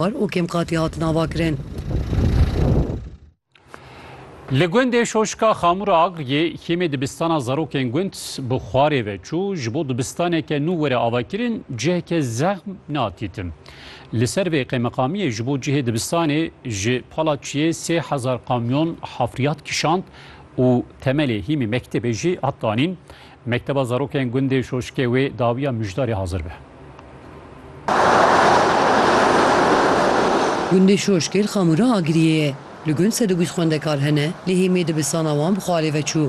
Bar û kêmqatî hatin avakirin. Li gundê Şoşka Xamura Agryê kêmê dibistana zarokên gund bi xwarê ve çû, ji bo dibistaneke nû were avakirin ciheke zexm na dîtin. Li ser vê qêmeqamiyê ji bo cihê dibistanê ji pala çiyê sê hezar kamyon hafriyat kişand û temelê hîmî mektebê jî hat danîn. Mekteba zarokên gundê Şoşikê wê dawiya Mijdarê hazir be. Gundê Şoşikê li Xamûra Agiriyê ye. Li gund sed û bîst xwendekar hene lê hêmê dibistana wan bi xwe alê veçû.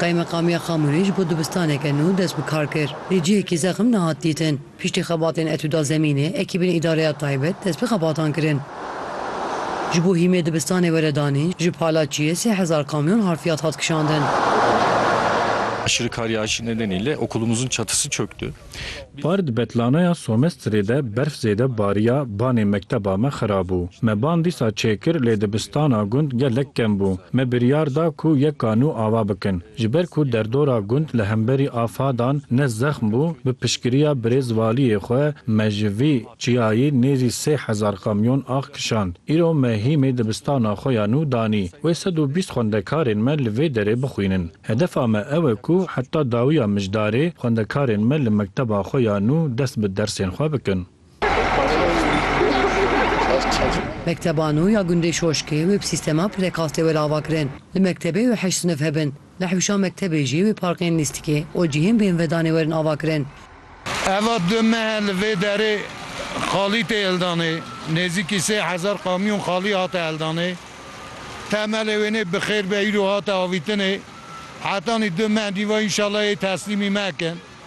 Qaymeqamiya Xamûrê ji bo dibistaneke nû dest bi kar kir lê cihekî zexm nehat dîtin. Piştî xebatên Etûda Zemînê, ekîbên îdareya taybet dest bi xebatan kirin. Ji bo hîmê dibistanê were danîn, ji Palaçiyê sê hezar kamyon harfiyat hat kişandin. Aşırı kar yağışı nedeniyle okulumuzun çatısı çöktü. Par di Betlanoya Somestrê de berf zêde bariya, banê mekteba me xirabû. Me ban dîsa çêkir lê dibistana gund gelek kem bû. Me biryar da ku yeka nû ava bikin. Ji ber ku derdora gund li hemberî afadan ne zexm bû, bi piştgiriya birêz valiyê xwe me ji vî çiyayî nêzî sê hezar kamyon ax kişand. Îro me hîmê dibistana xwe ya nû danî wê sed û bîst xwendekarên me li vê derê bixwînin. Hedefa me ew e ku heta dawiya mijdarê xwendekarên me li mekteba xwe ya nû dest bi dersên xwe bikin. Mekteban û ya gundê Şoşkê wê bi sîstema prekastê were ava kirin. Li mektebê wê heşt sinif hebin. Li hewşan mektebê jî wê parkên lîstikê û cihên bêhnvedanê werin ava kirin. Eva du mehe li vê derê xalî tê hildanê. Nêzîkî sê hezar kamyon xalî hate hildanê. Temelê wê nê bi xêr be îro hate avîtinê. Hetanî du meh dî va înşallah yê teslîmî me kin.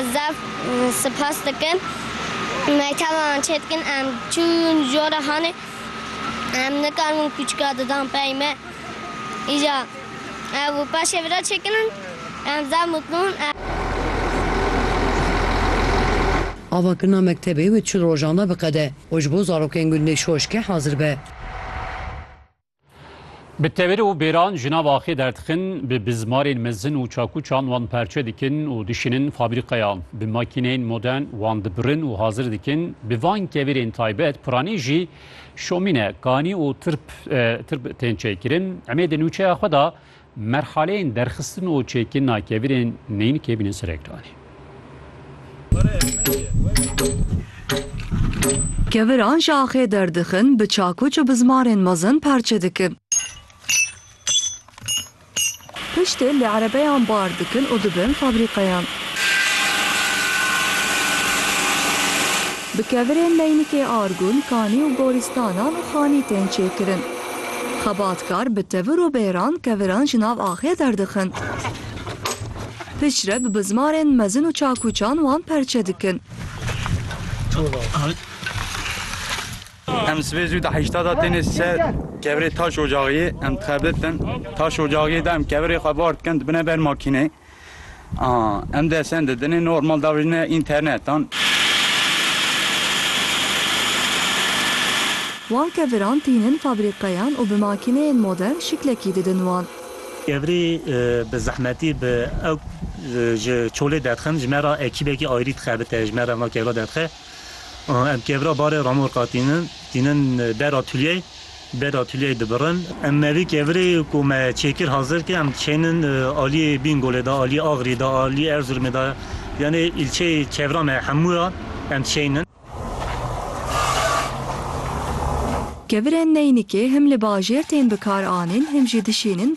Ez zaf sipas dikim mekteban çê dikin em çûn jora hanê em nikarin kûçika didan pey me îja ev û paşê vira çêkirin em zaf mutlu in. Avakirina mektebê wê çil rojan de biqede û ji bo zarokên gundê Şoşkê hazir be. Bi tevir û bêran jinan axê derdixin, bi bizmarên mezin û çakûçan wan perçe dikin û dişînin fabrîqeyan. Bi makîneyên modern wan dibirin û hazir dikin. Bi van kevirên taybet piranî jî şomîne, kanî û tirp tirp tên çêkirin. Emê di nûçeya xwe de Merxaleyên derxistin û çêkirina kevirên neynikê bîne ser ekranê. Keviran ji axê derdixin, bi çakuç û bi zimarên mezin parçe dikin. Piştî li erebeyan bar dikin û dibin fabrîqeyan. Bi kevirên neynikê argûn, kanî û gorîstanan û xanî tên çêkirin. Xebatkar bi tevir û bêran keviran ji nav axê derdixin. Piştre bi bizmarên mezin û çakûçan wan perçe dikin. Em sibê zû di heşta de têne ser kevirê taş ocaxiyê. Em dixebitin. Taş ocaxiyê de em kevirê xwe bar dikin dibine ber makînê. Em dê çend di dinê normal davêjine înternetan. Wan keviran tînin fabrîkayan û bi makîneyên modern şiklekî didin wan. Kevirî bi zehmetî bi ewk ji çolê derxin, ji me re ekîbekî ayrî dixebite, ji me re vana kevira derdixe. Em kevra barê remorka tînin, tînin ber atûlyeyê, ber atûlyeyê dibirin. Em me vî kevirê ku me çêkir hazir kir, em diçeynin aliyê Bingolê de, aliyê Axirî de, aliyê Erzurumê de, yanê îlçeyê kevra me hemû ya em diçeynin. Kevirên neynikê him li bajêr tên bikaranîn him jî dişînin